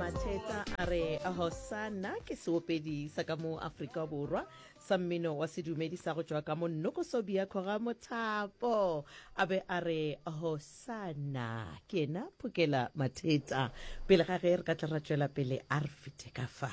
matšhetsa a re hosana ke seopedi sa ka mo aforika borwa sa mmino wa sedumedi sa go tšwa ka mo nnokosobia kgoga mothapo a be a re hosana ke ena phokela mathetsa pele ga ge re ka tla ra tšwela pele a re fete ka fa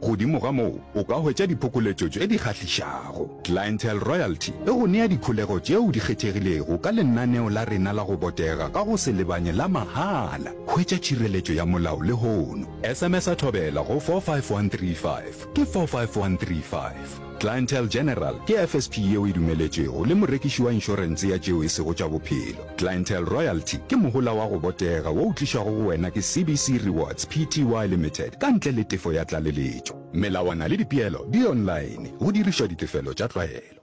Godimo ga moo, o ka hwetša diphokoletšo tše di kgahlišago. Clientele Royalty e go nea dikholego tšeo di kgethegilego ka lenaneo la rena la go botega ka go se lebanye la mahala. Hwetša tšhireletšo ya molao lehono. SMS-a Thobela go 45135. Ke 45135. Clientele General ke FSP yeo e dumeletšwego le morekiši wa inšorense ya tšeo e sego tša bophelo. Clientele Royalty ke mohola wa go botega wo o tlišwago go wena ke CBC Rewards Pty Limited ka ntle le tefo ya tlaleletšo. Melawana le dipeelo di online go dirišwa ditefelo tša tlwaelo.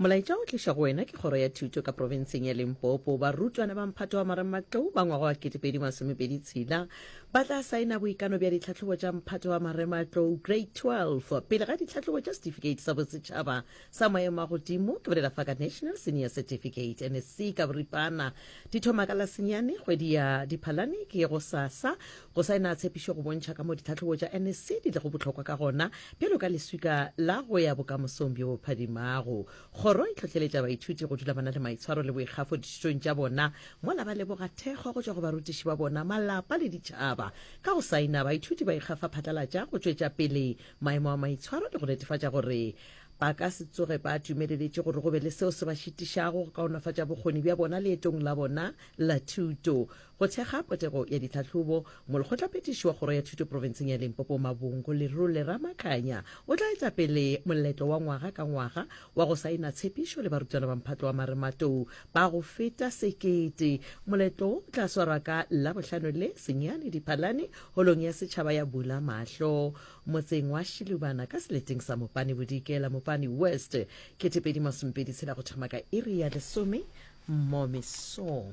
Molaetša o tliša go wena ke Kgoro ya Thuto ka Profenseng ya Limpopo. Barutwana ba Mphato wa Marematlou ba ngwaga wa 2026 ba tla saena boikano bja ditlhahlobo tša Mphato wa Marematlou Grade 12 pele ga ditlhahlobo tša Setifikeiti sa Bosetšhaba sa Maemo a Godimo, ke bolela fa ka National Senior Certificate, NSC, ka boripana. Di thoma ka Lasenyane, kgwedi ya Diphalane, ke gosasa. Go saena tshepišo go bontšha ka mo ditlhahlobo tša NSC di lego bohlokwa ka gona bjalo ka leswika la go ya bokamosong bjo bo phadimago. Kgoro e tlhohleletša baithuti go dula ba na le maitshwaro le boikgafo dithutong tša bona mola ba leboga thekgo go tšwa go barutiši ba bona, malapa le ditšhaba. Ka go saena, baithuti ba ikgafa phatlalatša go tšwetša pele maemo a maitshwaro le go netefatša gore ba ka se tsoge ba dumeleletše gore go be le seo se ba šitišago go kaonafatša bokgoni bja bona leetong la bona la thuto. Go thekga potego ya ditlhahlobo, Molekgotlaphethiši wa Kgoro ya Thuto Profenseng ya Limpopo Mabongo Lerole Ramakanya o tla etša pele moletlo wa ngwaga ka ngwaga wa go saena tshepišo le barutwana ba mphato wa marematlou ba go feta sekete. Moletlo wo o tla swarwa ka Labohlano le, senyane, Diphalane, Holong ya Setšhaba ya Bula Mahlo motseng wa Shilubana ka seleteng sa Mopane Bodikela, Mopane West, kete pedi masomepedi tshela go thoma ka iri ya lesome mo mesong.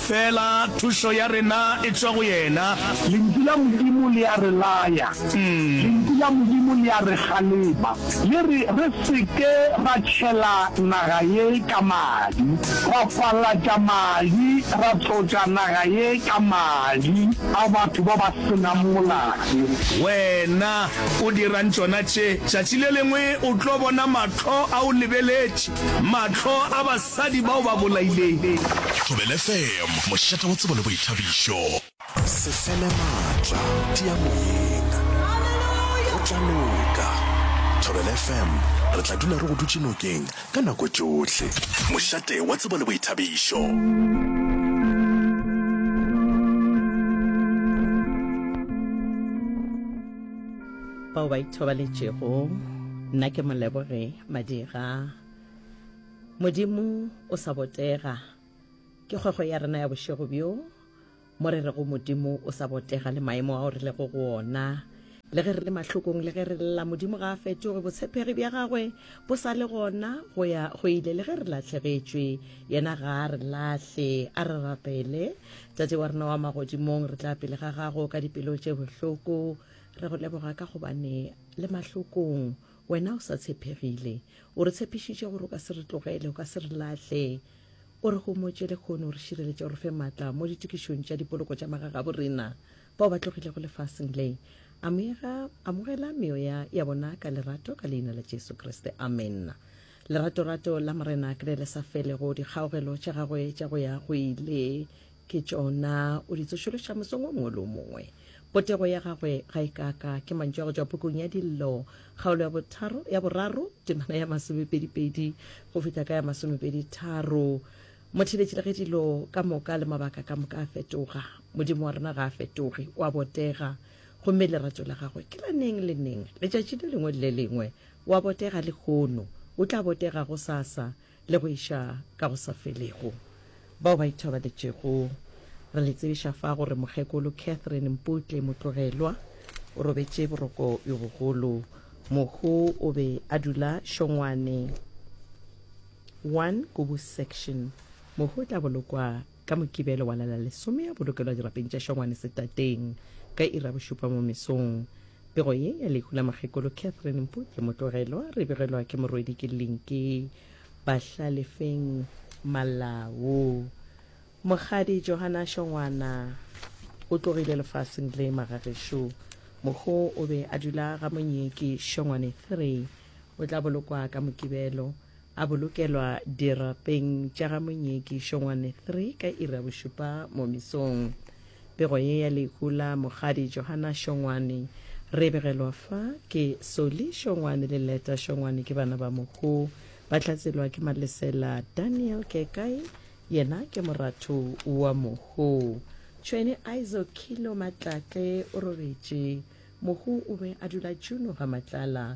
Feela thušo ya rena e tšwa go yena. Lentšu la Modimo le a re laya. Lentšu la Modimo le a re kgalema. Le re re se ke ra tšhela naga ye ka madi, ra falatša madi, ra tlotša naga ye ka madi a batho ba ba se nang molato. Wena o dirang tšona tše? Tšatši le lengwe o tlo bona mahlo a o lebeletše, mahlo a ba. Basadi bao ba bolaileng. Thobela FM, mošate wa tsebo le boithabišo. Se fele matla, tia moyeng. Go tla loka. Thobela FM, re tla dula re go dutše nokeng ka nako tšohle. Mošate wa tsebo le boithabišo. bao ba ithobaletšego nna ke moleboge madira Modimo o sa botega ke kgwego ya rena ya bošego bjo mo re rego Modimo o sa botega le maemo ao re lego go ona le ge re le mahlokong le ge re lla Modimo ga a fetoge botshepegi bja gagwe bo sa le gona go ya go ile le ge re lahlegetšwe yena ga a re lahle a re rapele tate wa rena wa magodimong re tla pele ga gago ka dipelo tše bohloko re go leboga ka gobane le mahlokong Wena o sa tshepegile. O re tshepišitše gore o ka se re tlogele, o ka se re lahle. O re gomotše lehono o re šireletše, o re fe matla mo ditokišong tša dipoloko tša magagabo rena bao ba tlogilego lefaseng le. Amega, amogela meoya ya bona ka lerato ka Leina la Jesu Kriste. Amenna. Leratorato la Morena ke le le sa felego, dikgaogelo tša Gagwe tša go ya go ile Ke tšona o di tsošološa mosong o mongwe le o mongwe. Potego ya gagwe ga e kaka ke mantšu a go tšwa pukung ya Dillo, kgaolo ya botharo, ya boraro, temana ya masomepedipedi go fihla ka ya masomepeditharo. Motheletši le ge dilo ka moka le mabaka ka moka a fetoga, Modimo wa rena ga a fetoge, o a botega. Gomme lerato la gagwe ke la neng le neng, letšatši le lengwe le le lengwe. O a botega lehono, o tla botega gosasa. le go iša ka go sa felego. Bao ba ithobaletšego, re le tsebiša fa gore Mokgekolo Catherine Mputle Motlogelwa o robetše boroko yo bogolo. Mohu o be a dula Šongwane 1 Kubu Section. Mohu o tla bolokwa ka Mokibelo wa la la lesome, a bolokelwa dirapeng tša Šongwane setateng ka iri ya bošupa mo mesong. Pego ye ya lehu la Mokgekolo Catherine Mpuke Motlogelwa re begelwa ke morwedi ke Linki Bahlalefeng Malau. Mokgadi Johana Šongwana o tlogile lefaseng le magagešo. Mokgo o be a dula ga Monyeki Šongwane 3 o tla bolokwa ka Mokibelo. A bolokelwa dirapeng tša ga Monyeki Šongwane 3 ka iri ya bošupa mo mesong. Pego ye ya lehu la Mokgadi Johana Šongwane re e begelwa fa ke Soli Šongwane le Leta Šongwane ke bana ba mohu. Ba hlatselwa ke Malesela Daniel Kekai yena ke moratho wa mohu. Tšhwene Izo Kilo Matlatle o rogetše. Mohu o be a dula Juno ga Matlala.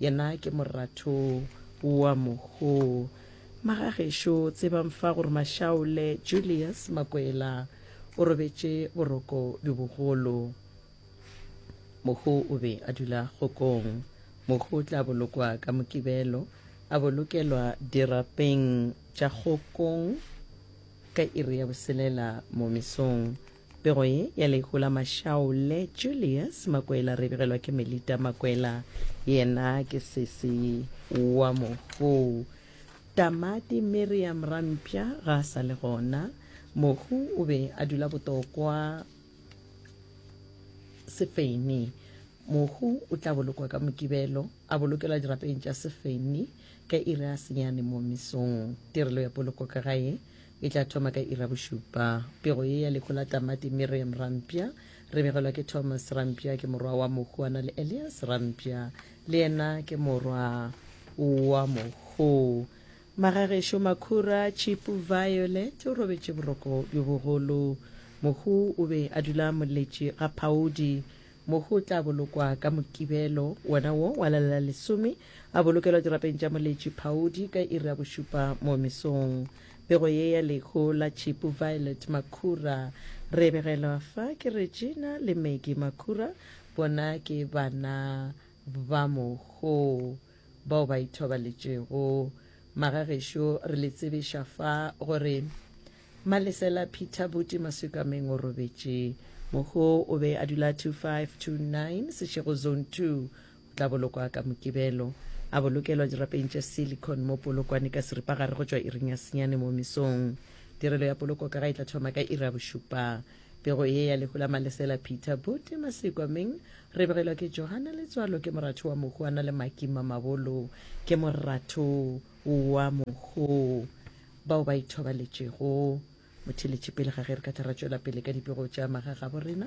Yena ke moratho wa moho. Magagešo tsebang fa gore Mashaole Julius Makwela o robetše boroko bjo bogolo. Moho o be a dula kgokong. Moho o tla bolokwa ka Mokibelo, a bolokelwa dirapeng tša kgokong ka iri ya boselela mo mesong. Pego ye ya lehu la Mashaole, Julius Makwela re begelwa ke Melita Makwela, yena ke sesi wa mohu Tamati. Miriam Rampya ga a sa le gona. Mohu o be a dula botokwa Sefeni. Mohu o tla bolokwa ka Mokibelo, a bolokelwa dirapeng tša Sefeni ka iri ya senyane mo mesong. Tirelo ya poloko ka gae E tla thoma ka ira bošupa. Pego ye ya lehu la tamati Miriam Rampya re begelwa ke Thomas Rampya ke morwa wa mohu a na le Elias Rampya le yena ke morwa wa mohu. Magagešo Makhura Chipu Violet o robetše boroko bjo bogolo. Mohu o be a dula moletše ga phaodi Mohu o tla bolokwa ka Mokibelo wona wo wa lela lesome, a bolokelwa dirapeng tša moletši phaodi ka iri ya bošupa mo mesong. Pego ye ya lehu la Tšhipu Violet Makhura. Re begelwa fa ke Regina le Maggie Makhura, bona ke bana ba mohu bao ba ithobaletšego. Magagešo re le tsebiša fa gore Malesela Peter Buti Masukameng o robetše. Moho o be a dula 2529 Seshego Zone 2. O tla bolokwa ka Mokibelo. A bolokelwa dirapeng tša silicon mo Polokwane ka seripagare go tšwa iring ya senyane mo mesong. Tirelo ya poloko ka ga e tla thoma ka iri ya bošupa. Pego ye ya lehu la Malesela Peter Buti Masukameng re begelwa ke Johanna Letswalo ke moratho wa mohu a na le Maki Mamabolo ke moratho wa mohu. bao ba ithobaletšego motheletši pele ga ge re ka tla ra tšwela pele ka dipego tša magagabo rena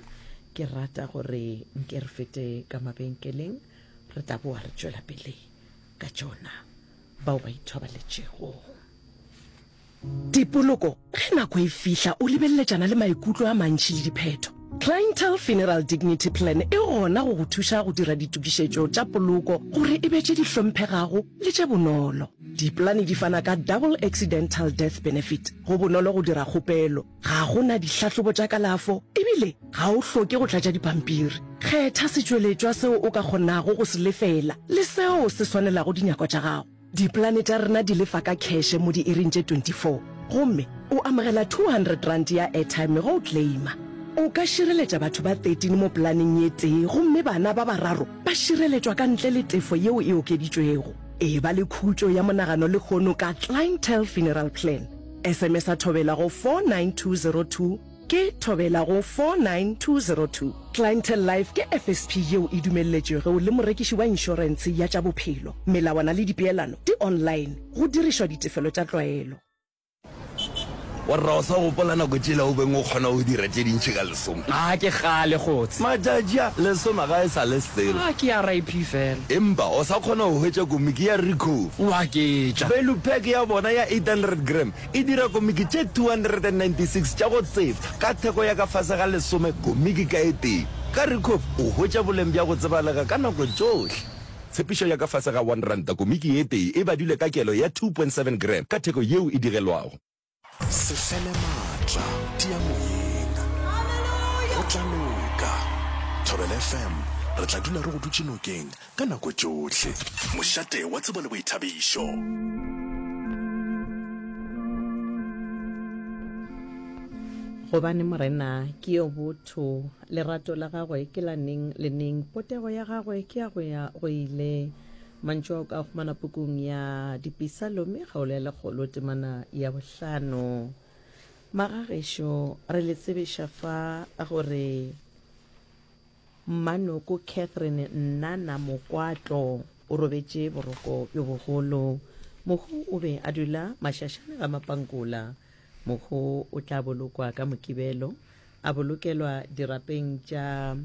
ke rata gore nke re fete ka mabenkeleng re tla boa re tšwela pele ka tšona bao ba ithobaletšego dipoloko ge nako e fihla o lebeleletšana le maikutlo a mantši le diphetho Clientele Funeral Dignity Plan e gona go go thuša go dira ditokišetšo tša poloko gore e be tše di hlomphegago le tše bonolo. Dipolane di fana ka Double Accidental Death Benefit. Go bonolo go dira kgopelo. Ga go na dihlahlobo tša kalafo ebile ga o hloke go tlatša dipampiri. Kgetha setšweletšwa seo o ka kgonago go se lefela le seo se swanelago dinyako tša gago. Dipolane tša rena di lefa ka kheshe mo diiring tše 24 gomme o amogela R200 ya airtime ge o claima. O ka šireletša batho ba 13 mo polaneng ye tee gomme bana ba bararo ba šireletšwa ka ntle le tefo yeo e okeditšwego. E ba le khutšo ya monagano lehono ka Clientele Funeral Plan. SMS-a Thobela go 49202 ke Thobela go 49202. Clientele Life ke FSP yeo e dumelletšwego le morekiši wa inšorentshe ya tša bophelo. Melawana le dipeelano di online, go dirišwa ditefelo tša tlwaelo. Warra o sa gopola nako tšela o beng o kgona go dira tše dintši ka lesoma? A ke kgale kgotse. Matšatši a, lesoma ga e sa le selo. A ke RIP fela. Empa o sa kgona go hwetša komiki ya Ricoh. O a ke tša. Value pack ya bona ya 800 gram e dira komiki tše 296 tša go tsefta ka theko ya ka fase ga lesome komiki ka e tee. Ka Ricoh o hwetša boleng bja go tsebalega ka nako tšohle. Tshepišo ya ka fase ga one ranta komiki ye tee e badilwe ka kelo ya two point seven gram ka theko yeo e digelwago. Se fele maatla, tia moyeng. Go tla loka. Thobela FM, re tla dula re go dutše nokeng ka nako tšohle. Mošate wa tsebo le boithabišo. Gobane Morena ke yo botho. Lerato la gagwe ke la neng le neng. Potego ya gagwe ke ya go ya go ile. Mantšu a o ka a humana pukung ya Dipisalomi, kgaolo ya lekgolo, temana ya bohlano. Magagešo, re le tsebiša fa gore Mmanoko Catherine Nnana Mokwatlo o robetše boroko bjo bogolo. Mohu o be a dula mašašane ga Mapankula. Mohu o tla bolokwa ka Mokibelo. A bolokelwa dirapeng tša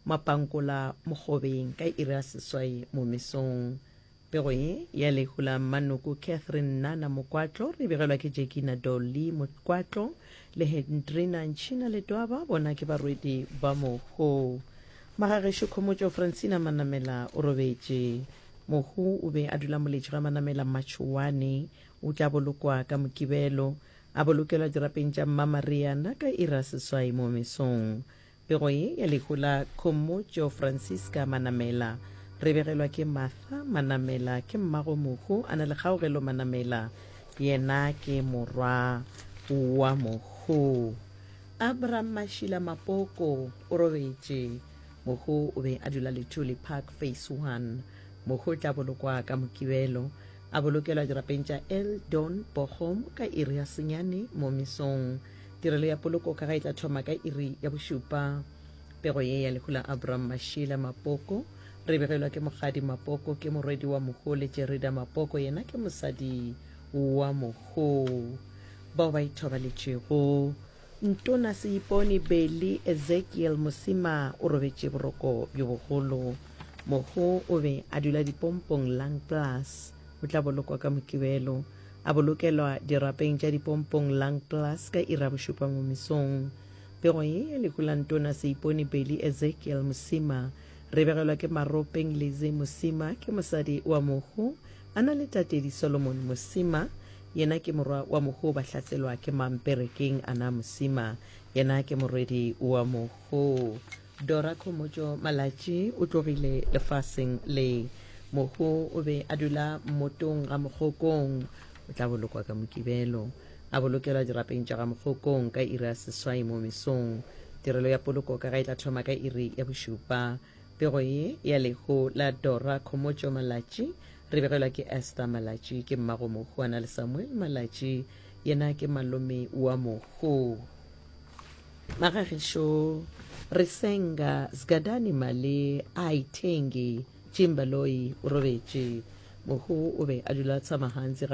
mapankola mokgobeng ka iri ya seswai momesong. Pego ye ya lehu la mmanoko Catherine Nana Mokwatlo re begelwa ke Jekina Dolly Mokwatlo le Hendrina Ntšhina Letwaba bona ke barwedi ba mohu. Magagešo Khomotšo Francina Manamela o robetše. Mohu o be a dula moletši ga Manamela Matšhowane. O tla bolokwa ka Mokibelo. A bolokelwa dirapeng tša Mma Maria na ka iri ya seswai mo mesong. Pego ye ya lehu la Khomotšo Francisca Manamela. Re begelwa ke Martha Manamela, ke mmago mohu a na le Kgaogelo Manamela, yena ke morwa wa mohu. Abram Mashila Mapoko o robetše. Mohu o be a dula Lithuli Park, Phase One. Mohu o tla bolokwa ka Mokibelo. A bolokelwa dirapeng tša El Don Bochum ka iri ya senyane mo mesong. Tirelo ya poloko ka ga e tla thoma ka iri ya bošupa. Pego ye ya lehu la Abram Mashila Mapoko re begelwa ke Mokgadi Mapoko ke morwedi wa Moho le Jerida Mapoko yena ke mosadi wa Moho bao ba ithobaletšego. Ntona Seipone Beli Ezekiel Mosima o robetše boroko bjo bogolo. Mohu o be a dula dipompong Lung Plus. O tla bolokwa ka Mokibelo. A bolokelwa dirapeng tša dipompong Lung Plus ka iri ya bošupa mo mesong. Pego ye ya lehu la Ntona Seipone Beli Ezekiel Mosima re begelwa ke Maropeng Lizzy Mosima, ke mosadi wa mohu, a na le tatedi Solomon Mosima, Yena ke morwa wa mohu ba hlaselwa ke mang perekeng a na mosima yena ke morwedi wa mohu Dora Khomotšo Malatši o tlogile lefaseng le mohu o be a dula mmotong ga mokgokong o tla bolokwa ka mokibelo a bolokelwa dirapeng tša ga mokgokong ka iri ya seswai mo mesong tirelo ya poloko ka ga e tla thoma ka iri ya bošupa Pego ye ya lehu la Dora Khomotšo Malatši re begelwa ke Esther Malatši, ke mmago Mohu a na le Samuel Malatši, yena ke malome wa Mohu. Magagišo re senga Zgadani Mali a ithengi, Chimbaloi o robetše. Mohu o be a dula tshama gantsi ga